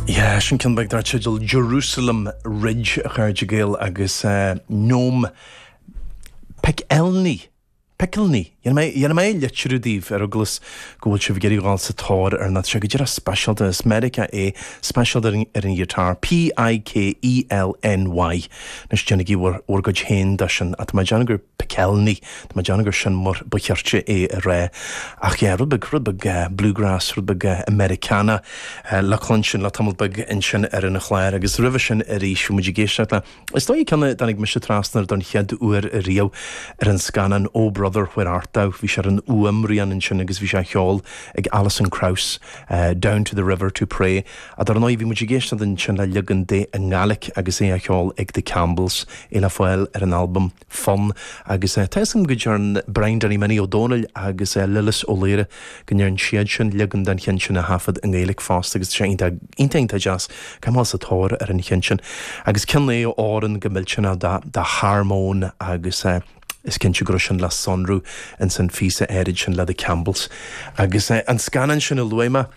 Yeah, sin ceann beag dar teideal Jerusalem Ridge, a chairde Gael, agus Noam Pikelny, Pikelny? Dhéanfaidh mé litriú daoibh, ar eagla go bhfuil sibh ag iarraidh a dhul sa tóir ar an fhear seo, tá sé díreach speisialta, as Meiriceá é, speisialta ar an ghiotár, P-i-k-e-l-n-y, anois déanaigí bhur gcuid féin de sin, ach tá mé ag déanamh gur. Pikelny. Tá mé ag déanamh gur sin mar ba cheart é a rá. Ach yeah, rud beag, rud beag bluegrass, rud beag Americana le cluinstin le tamall beag ansin ar an chlár. Agus roimhe sin arís, bhí muid ag éisteacht le, is dóigh, ceann a dtáinig mise trasna air don chéad uair riamh ar an scannán Oh Brother, Where Art Thou? Bhí sé ar an fhuaimrian ansin agus bhí sé á cheol ag Alison Krauss, Down to the River to Pray. A, dar ndóigh, bhí muid ag éisteacht ansin le leagan de i nGaeilic agus é á cheol ag The Campbells, é le fáil ar an albam Fonn, agus tá 'fhios agam go ndearn Brian Danny Minnie Ó Domhnaill agus Lillis Ó Laoire go ndearn siad sin leagan den cheann sin a thaifeadadh i nGaeilic fosta agus tá sé iontach, iontach, iontach deas, téigí sa tóir ar an cheann sin agus ceann é a fhóireann go millteanach do, dá harmóin agus is cinnte go raibh sin le sonrú ins an phíosa áirid sin le The Campbells. Agus an scannán sin a luaigh mé,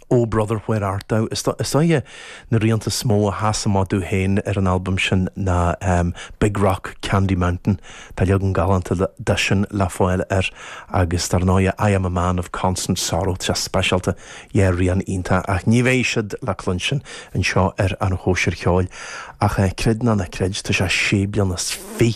Oh Brother Where Art Thou? Is dóiche na rianta is mó a sheasann amach domh féin ar an albam sin ná Big Rock Candy Mountain, tá leagan galánta de sin le fáil air, agus dar ndóigh I Am A Man Of Constant Sorrow, tá sé speisialta, yeah rian iontach, ach ní bheidh siad le cluinstin anseo ar An Chóisir Cheoil, ach creid nó ná creid, tá sé sé bliana is fi.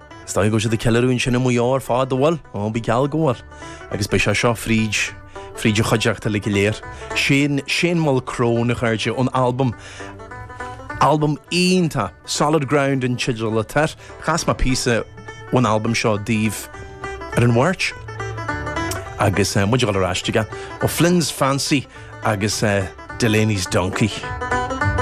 Is dóigh go bhfuil siad ag ceiliúradh ansin i Maigh Eo ar fad, an bhfuil? Ó, bí geall go bhfuil. Agus beidh sé seo fríd, fríd an chuideachta uilig go léir. Sin Shane Mulcrone, a chairde, ón albam, albam iontach, Solid Ground an teideal atá air. Chas mé píosa ón albam seo daoibh ar an Mháirt agus muid ag gabháil ar ais chuige, O'Flynn's Fancy agus Delaney's Donkey.